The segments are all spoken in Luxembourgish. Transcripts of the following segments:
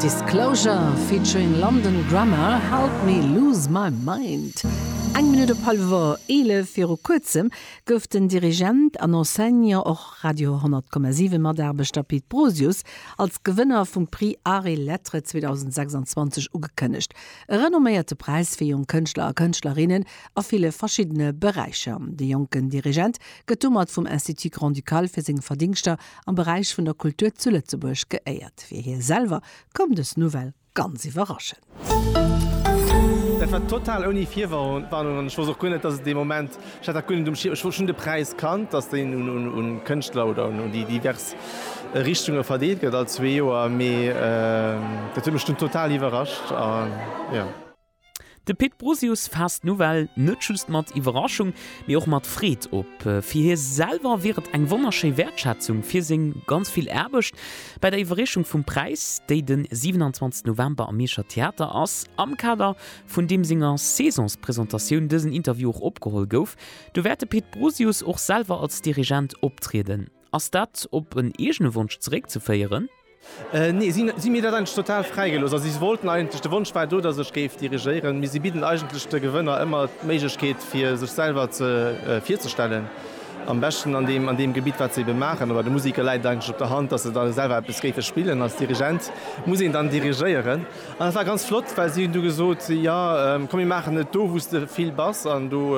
Disclosure featuring London Grammar, Help Me Lose My Mind. Eng Minutt op hallwer 11 viru kuerzem gouf den Dirigent an Enseignant, och Radio 10,7 Mataarbechter, Pit Brosius als Gewënner vum Prix Arts et Lettres 2026 ugekënnegt. E renomméierte Präis fir jonk Kënschtler a Kënschtlerinnen a ville verschiddene Beräicher. De jonken Dirigent gëtt domat vum Institut Grand-Ducal fir seng Verdingschter am Beräich vun der Kultur zu Lëtzebuerg geéiert. Fir hie selwer koum dës Nouvelle ganz iwwerraschend. Dat war total ouni Virwarnung an ech wousst och guer net, dass et dee Moment, ech hat dat guer net um Schierm, ech wosst, ech hunn de Präis kannt, dass deen un Kënschtler oder un déi divers Richtunge verdeelt gëtt all zwee Joer, mee dat huet mech dunn total iwwerrascht a jo. De Pit Brusius faasst d'Nouvelle net just mat Iwwerraschung, mee och mat Freed op. Fir hie selwer wier et eng wonnerschéi Wäertschätzung fir seng ganz vill Aarbecht. Bei der Iwwerreechung vum Präis, déi den 27 November am Mierscher Theater ass, am Kader vun deem senger Saisonspresentatioun dësen Interview och opgeholl gouf, do wäert de Pit Brusius och selwer als Dirigent optrieden. Ass dat op en eegene Wonsch zeréckzeféieren? Nee, si hu mir dat eigentlech total fräi gelooss. Also si wollten eigentlech, de Wonsch war do, datt ech géif dirigéieren, mee si bidden eigentlech de Gewënner ëmmer d'Méiglechkeet fir sech selwer ze virzestellen, am beschten an deem an deem Gebitt wat se ebe maachen. Oder de Musiker läit et eigentlech op der Hand, datt se da selwer eppes géife spillen. Als Dirigent muss een dann dirigéieren. An dat war ganz flott, well si hunn du gesot, jo komm mir maachen et do wou s de vill bass an do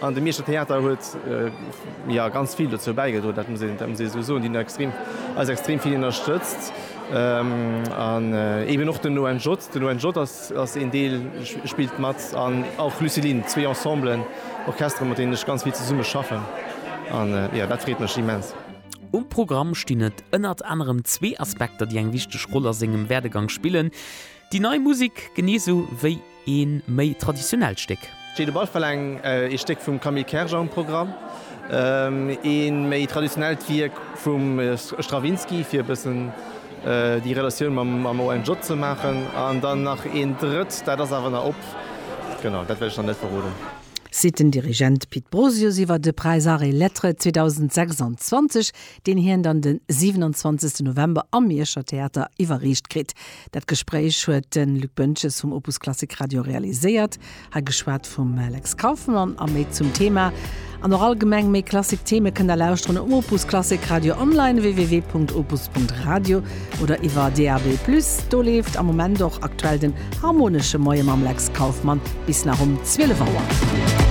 An de Mierscher Theater huet jo ganz vill dozou bäigedroen, dat muss een esou soen. Déi hunn eis extrem vill ënnerstëtzt an eeben och den ONJ. Den ONJ ass een Deel, spillt mat an och Lucilin, zwee Ensemblen, Orchestere mat deenen ech ganz vill zesumme schaffen an jo, dat freet mech immens. Um Programm stinn et ënnert anerem zwee Aspekter, déi eng wichteg Roll a sengem Werdegang spillen, déi nei Musek genee esou wéi E méi traditionellt Stéck. Jeu de Ball verlaang e Stéck vum Camille Kerger um Programm. E méi traditionellt Wierk vum Stravinsky, fir e bëssen déi Relatioun mam ONJ ze maachen. An dann nach een drëtt, dat ass awer nach op. Genau, dat wäert ech nach net verroden. Seet den Dirigent Pit Brosius iwwer de Präis Arts et Lettres 2026. deen hien dann de 27 November am Mierscher Theater iwwerreecht kritt. Dat Gespréich huet de Luc Boentges vum Opus Klassik Radio realiséiert. Hei geschwat vum Lex Kauffmann a méi zum Thema. An och allgemeng méi Klassik Theme kënnt der lauschteren um Opus Klassik Radio online www.opus.radio oder iwwer DAB+ do leeft am Moment och aktuell den harmonesche Moie mam Lex Kauffmann bis nach um 12 Auer.